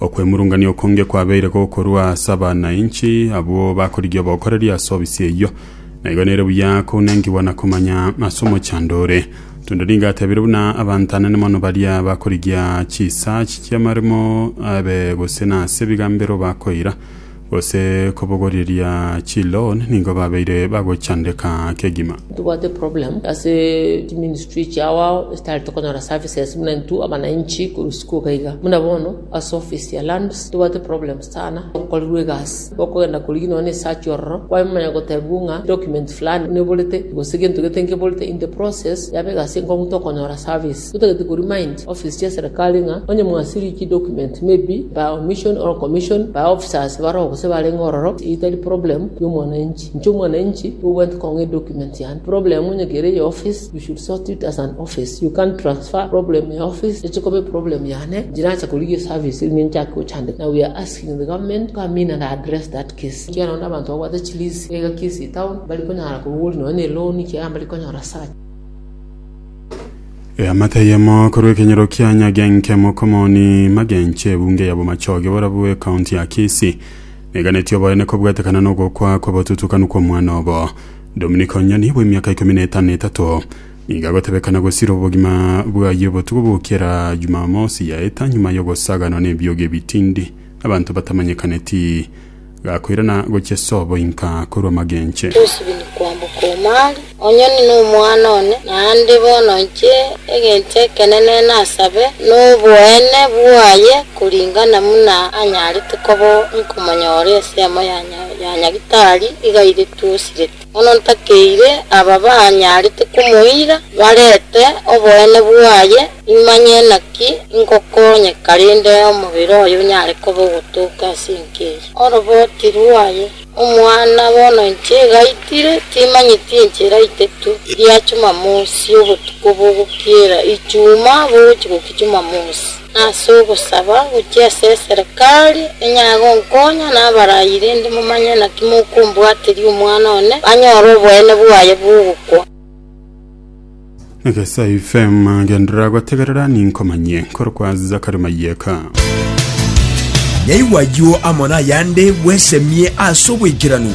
Okwemurungania okonge kwabeire gokorwa ase abanainchi abwo bakorigia obokoreri ase obisi eyio, na igo nere buya kounengigwa na komanya ase omochando ore. Tonde nigo atebire buna abanto anene mono baria bakorigia chisaach chi'amaremo abe gose nase ebigambero bakoira, Gose kobogoreria chiloan nigo babeire bagochandeka kegima. Tobwate problem ase chi ministry chiao ao esitari tokonyora services buna intwe abanainchi korwa isiko iga iga buna bono ase office ya lands tobwate problem sana okorirwe egasi okogenda korigia nonya ne search ororo kwamanya gotebigwa ng'a document fulani neborete gose gento gete nkeborete in the process yaba egasi enkong'u tokonyora service Totagete koremind office chia serikali ng'a onye mwasirie chi document maybe by omission or commission by officers baroo gose barenge ororo etari problem ya omwananchi. Inche omwananchi obwate kong'a edocument yane problem onye kere eye office you should sort it as an office you can't transfer problem ya office eche koba eproblem yane njirache korigia eservice erinde nchake gochandeka now we are asking the government to come in and address that case ekiagera onde abanto babwate chi lease egaki ase etown bari konyara korwa gori nonye ne loan ekiagera mbari konyora search Eamate eyemo korwa ekenyero kia Nyagenke mokomoni magenche ebunge ya Bomachoge borabwo ekaunti ya Kisii neganeti oboene kobwatekana nogokwa kw'obotutukanu kw'omwana obo Dominic Onyoni bw'emiaka ikomi na etano etato nigo agotebekana gosira obogima bwaye obotuko bokera Jumamosi yaeta nyuma yogosaganwa nebiogi ebitindi abanto batamanyekaneti Gakoirana gochia sobo inka korwa magenche. Tosibini kwamboka Omari, onye nini omwana one, naende bono inche egencho ekenene nasabe noboene bwaye koringana buna anyarete koba nkomonyora ensemo ya Nyagetari igairetwe osirete. Bono ntakeire aba banyarete komoira, barete oboene bwaye, nimanye naki ingokonyeka rinde omobere oye onyare koba ogotooka ase enka eye. Oroboti rwaye. Omwana, bono inche igaitire, timanyeti inche iraite tu, ria Chumamosi, obotuko bogokiera Ichuma bogochi gokia Chumamosi. Nase ogosaba gochia ase eserekari enyare gonkonya nabarayie, rende momanye naki mokombwateria omwana one, banyore oboene bwaye bw'ogokwa. Egesai FM genderera gotegerera ninkomanyie korokwa Zakari Mayeka. Nyaigwa ayio amo nayande bwesemie ase oboikeranu.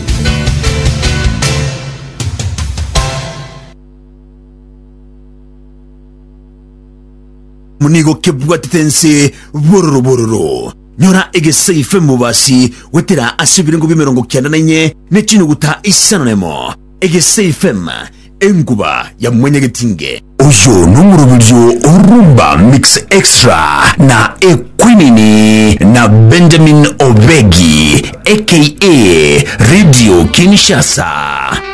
nigo kebwatete ense bororo bororo. Nyora egesaife mobasi gwetera ase ebirengo bi'emerongo kianda na inye ne chinyuguta isano na emo, egesaifem, enkuba ya mwanyagetinge. Oyo nomoroberio o Rumba Mix Extra na Ekwinini na Benjamin Obegi aka Radio Kinshasa.